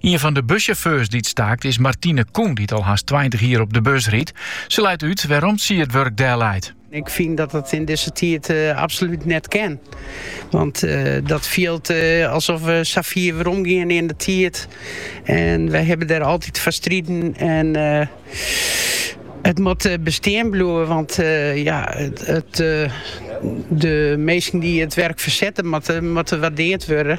Ien fan de bussjauffeurs dy't staakt is Martine Koen, dy't al hast tweintich jier op de bus rydt. Se leit út wêrom't sy it wurk delleit. Ik fyn dat it yn dizze tiid absolút net kin. Want dat fielt alsof we sa fier weromgeane yn de tiid. En wy hawwe der altyd foar striden. En it moat bestean bliuwe, want ja, it, de minsken dy't it wurk fersette, moatte, moatte waardeard wurde.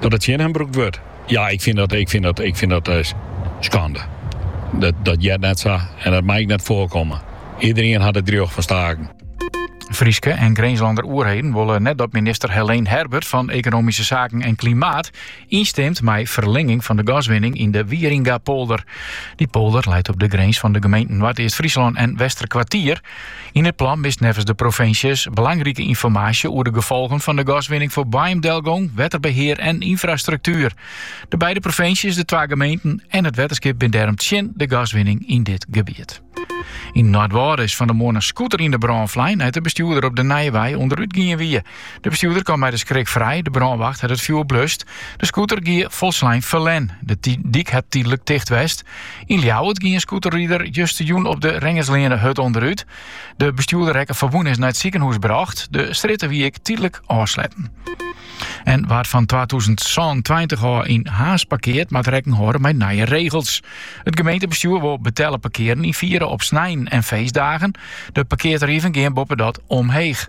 dat it tsjin him brûkt wurdt. Ja, ik fyn dat, ik fyn dat, ik fyn dat eh, skande. Dat, dat heart net sa en dat mei ek net foarkomme. Iederien hat it rjocht fan staken. Fryske en Grinslander oerheden wolle net dat minister Heleen Herbert fan Ekonomyske Saken en Klimaat ynstimt mei ferlinging fan de gaswinning yn de Wieringa-polder. Die polder leit op de grins fan de gemeenten Noardeast-Fryslân en Westerkwartier. Yn it plan mist neffens de provinsjes belangrike ynformaasje oer de gefolgen fan de gaswinning foar boaiemdelgong, wetterbehear en ynfrastruktuer. De beide provinsjes, de twa gemeenten en it wetterskip binne dêrom tsjin de gaswinning yn dit gebiet. Yn Noardwâlde is fan de moarn in scooter yn de brân flein nei't de bestjoerder op de Nijewei ûnderút gien wie. De bestjoerder kaam mei de skrik frij, de brânwacht hat it fjoer blust. De scooter gie folslein ferlern. De dyk hat tydlik ticht west. Yn Ljouwert gie in scooterrider justerjûn op de Rengersleane hurd ûnderút. De bestjoerder rekke ferwûne en is nei it sikehûs brocht. De strjitte wie ek tydlik ôfsletten. En wa't fan 2027 ôf yn Harns parkeart, moat rekken hâlde mei nije regels. It gemeentebestjoer wol betelle parkearen ynfiere op snein en feestdagen. De parkeartarieven gean boppedat omheech.